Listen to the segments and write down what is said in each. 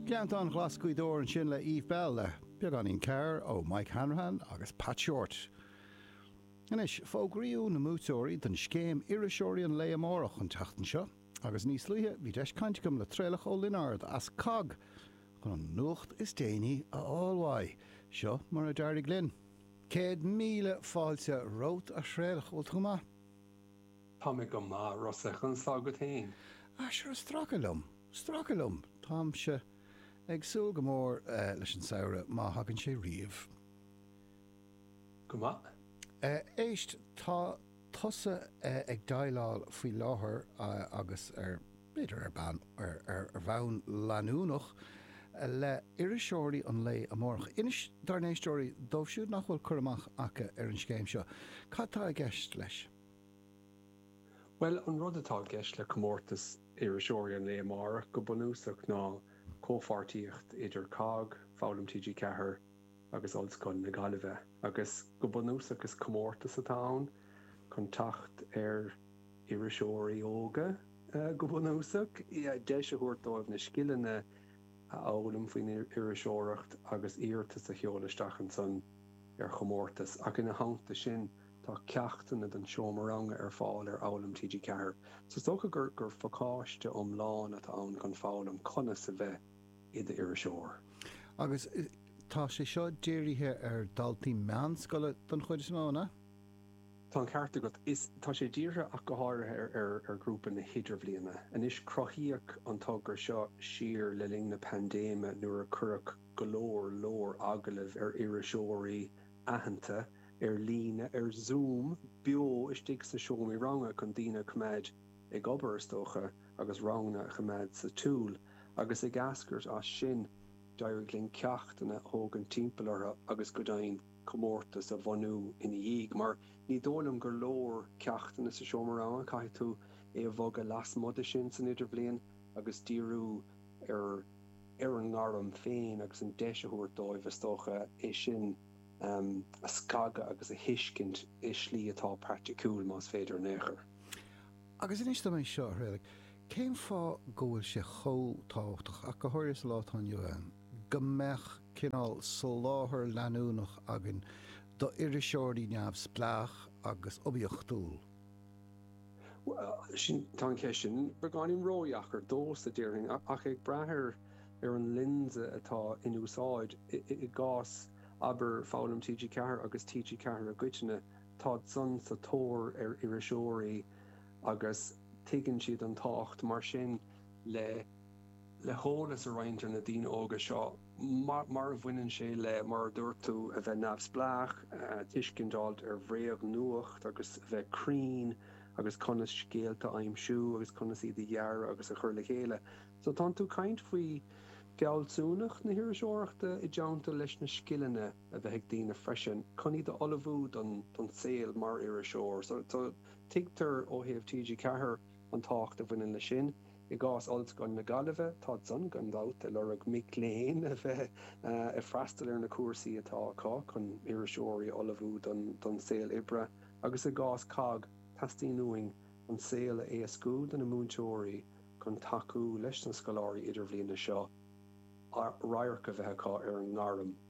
Gleanntáin Ghlas Gaoth Dobhair ansin le Eve Belle le beagáinín cabhair ó Mike Hanrahan agus Pat Shortt. Anois, fógraíodh na buaiteoirí don scéim Iriseoirí an Lae Amárach an tseachtain seo agus níos luaithe bhí deis caint agam le Traolach Ó Lionáird as COGG chun an nuacht is déanaí a fháil uaidh. Seo mar a d'éirigh linn. Céad míle fáilte romhat a Thraolach, bhfuil tú go maith? Tá mé go maith, Rossa, conas tá agat féin? Ah sure, stracadh liom, stracadh liom, táimse ag súil go mór leis an samhradh, má thagann sé riamh. Go maith. Éist, tá tusa ag déileáil faoi láthair agus ar, b'fhéidir ar bean, ar bhonn leanúnach le iriseoirí an lae amárach. Inis dár n-éisteoirí dóibh siúd nach bhfuil cur amach aca ar an scéim seo, cad tá i gceist leis. Bhuel, an rud atá i gceist le comórtas iriseoirí an lae amárach, go bunúsach, ná comhpháirtíocht idir COGG, Foghlaim TG4 agus Ollscoil na Gaillimhe. Agus go bunúsach is comórtas atá ann chun teacht ar iriseoirí óga, go bunúsach, deis a thabhairt dóibh na scileanna a fhoghlaim faoin iriseoireacht agus iarratas a sheoladh isteach ansan ar chomórtas, ach ina theannta sin, Tá ceachtanna don seomra ranga ar fáil ar Fhoghlaim TG4. Is dócha gur pacáiste iomlán atá ann chun foghlaim conas a bheith i d'iriseoir. Agus tá sé seo dírithe ar dhaltaí meánscoile don chuid is mó, an ea? Tá an ceart agat. Is tá sé dírithe ach go háirithe ar ghrúpa na hIdirbhliana. Anois, cruthaíodh an togra seo siar le linn na paindéime nuair a cuireadh go leor leor agallamh ar iriseoirí, aitheanta ar líne, ar Zoom, beo istigh sa seomra ranga chun daoine a choimeád ag obair, is dócha, agus ranganna a choimeád sa tsiúl. Agus ag eascairt as sin, d'éirigh linn ceachtanna a thógaint timpeall orthu agus, go deimhin, comórtas a bhunú ina dhiaidh. Mar ní dóigh liom gur leor ceachtanna sa seomra ranga, caithfidh tú é a bhogadh lasmuigh de sin san Idirbhliain agus díriú, ar ar an ngairm féin agus an deis a thabhairt dóibh, is dócha, é sin a scagadh agus a thuiscint i slí atá praiticiúil, más féidir in aon chor. Agus inis dom é seo, a Thraolaigh, cén fáth go bhfuil sé chomh tábhachtach, ach go háirithe sa lá atá inniu ann, go mbeadh cineál soláthar leanúnach againn d'iriseoirí neamhspleách agus oibiachtúil? Sin, tá an cheist sin beagáinín ródheacair domhsa, déarfainn, ach ag brath ar ar an lionsa atá in úsáid. I gcás, abair, Foghlaim TG4 agus TG4 i gcoitinne, táid-san sa tóir ar iriseoirí agus tuigeann siad an tábhacht, mar sin, le heolas a roinnt ar na daoine óga seo. mar a bhaineann sé le, mar a dúirt tú, a bheith neamhspleách, tuiscint a fháil ar bhréagnuacht agus a bheith cruinn agus conas scéalta a aimsiú agus conas iad a dhearadh agus a chur le chéile. So tá tú ag caint faoi fealsúnacht na hiriseoireachta i dteannta leis na scileanna a bheith ag daoine freisin chun iad a ullmhú don saol mar iriseoir. So tuigtear ó thaobh TG4 an tábhacht a bhaineann leis sin. I gcás Ollscoil na Gaillimhe, táid-san gan dabht ag lorg mic léinn a bheith ag freastal ar na cúrsaí atá acu chun iriseoirí a ullmhú don saol oibre agus i gcás COGG, teastaíonn uainn an saol a éascú do na múinteoirí chun tacú leis na scoláirí idirbhliana seo radharc a bheith acu ar an ngairm.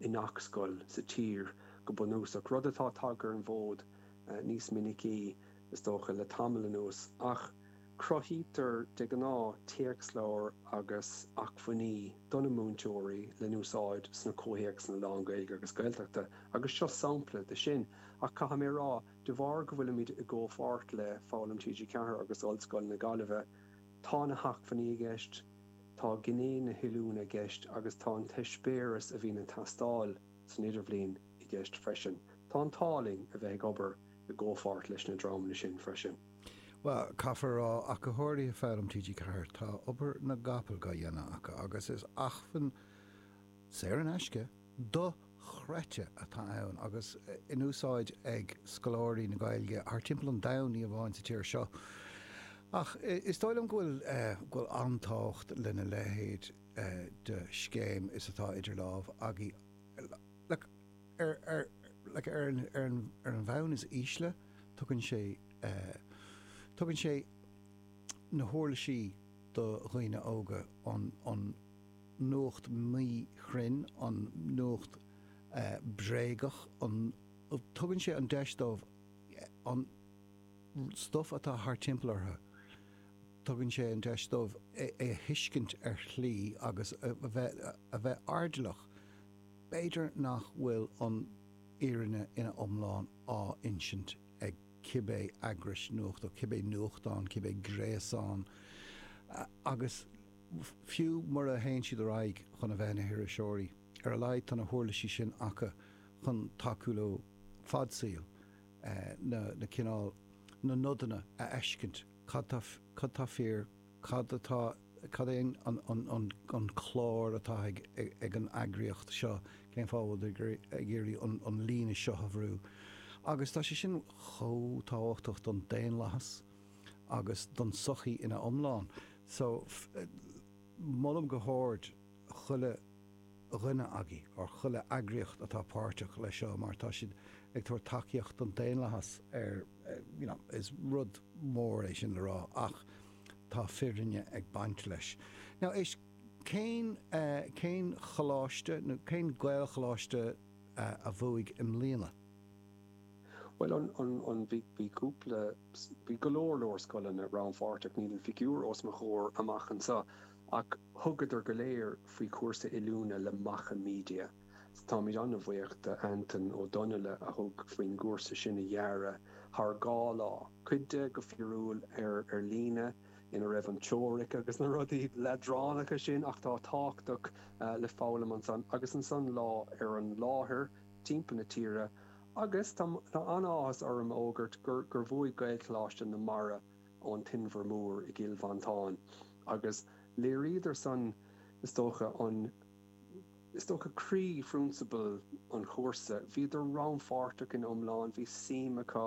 i ngach scoil sa tír go bunúsach, rud atá tagtha ar an bhfód níos minicí, is dócha, le tamall anuas, ach cruthaítear de ghnáth téacsleabhair agus acmhainní do na múinteoirí le húsáid sna comhthéacsanna lán-Ghaeilge agus Gaeltachta agus seo sampla de sin, ach caithfidh mé a rá, de bharr go bhfuilimid i gcomhpháirt le Foghlaim TG4 agus Ollscoil na Gaillimhe, Tá na hacmhainní i gceist, tá gné na hoiliúna i gceist agus tá an t-eispéireas a bhíonn ag teastáil san Idirbhliain i gceist freisin. Tá an t-ádh linn a bheith ag obair i gcomhpháirt leis na dreamanna sin freisin. Bhuel, caithfear a rá, ó thaobh Foghlaim TG4, tá obair na gcapall dá dhéanamh acu agus is acmhainn saor in aisce, dochreidte atá ann agus in úsáid ag scoláirí na Gaeilge thar timpeall an domhain, ní amháin sa tír seo. Ach is dóigh liom go bhfuil an-tábhacht lena leithéid de scéim is atá idir lámh againn. Ar an bhonn is ísle, tugann sé na huirlisí do dhaoine óga an. nuacht mhíchruinn, an nuacht bhréagach, an. tugann sé an deis dóibh an stuif atá thar timpeall orthu, tugann sé an deis dóibh é a thuiscint ar shlí agus a bheith airdeallach, b'fhéidir, nach bhfuil an fhírinne ina iomlán á insint ag cibé eagrais nuachta, cibé nuachtán, cibé gréasán agus. fiú mura théann siad ar aghaidh chun a bheith ina hiriseoirí. Ar a laghad tá na huirlisí sin acu chun tacú leo fad saoil na cineál, na nodanna a fheiscint, cad atá, cad atá fíor, cad atá, cad é an clár atá ag an eagraíocht seo, cén fáth a bhfuil tú ag iarraidh an líne seo a bhrú. Agus tá sé sin chomh tábhachtach don daonlathas. agus don tsochaí ina iomlán. So, molaim go hard chuile dhuine agaibh ar chuile eagraíocht atá páirteach leis seo mar tá siad ag tabhairt tacaíocht don daonlathas ar you know, is rud mór é sin le rá ach tá fírinne ag baint leis. Now, éist, cén, cén choláiste nó cén Gaelcholáiste a bhuaigh i mbliana? Bhuel an, an, an, bhí, bhí cúpla, bhí go leor, leor scoileanna rannpháirteach, níl an figiúr os mo chomhair amach anseo ach thugadar go léir faoi chúrsa oiliúna le Macha Media. So táimid an-bhuíoch d'Antaine Ó Donnaile a thug faoin gcúrsa sin a dhearadh thar dhá lá, cuid de go fíorúil ar, ar líne, ina raibh an teoiric agus na rudaí leadránacha sin ach atá tábhachtach le foghlaim ansan agus ansan lá ar an láthair. timpeall na tíre agus tá an-áthas orm a fhógairt gur bhuaigh Gaelcholáiste na Mara ón Inbhear Mór i gCill Mhantáin agus léiríodar san is dócha an is dócha croí-phrionsabal an chúrsa, bhíodar rannpháirteach ina iomlán, bhí suim acu.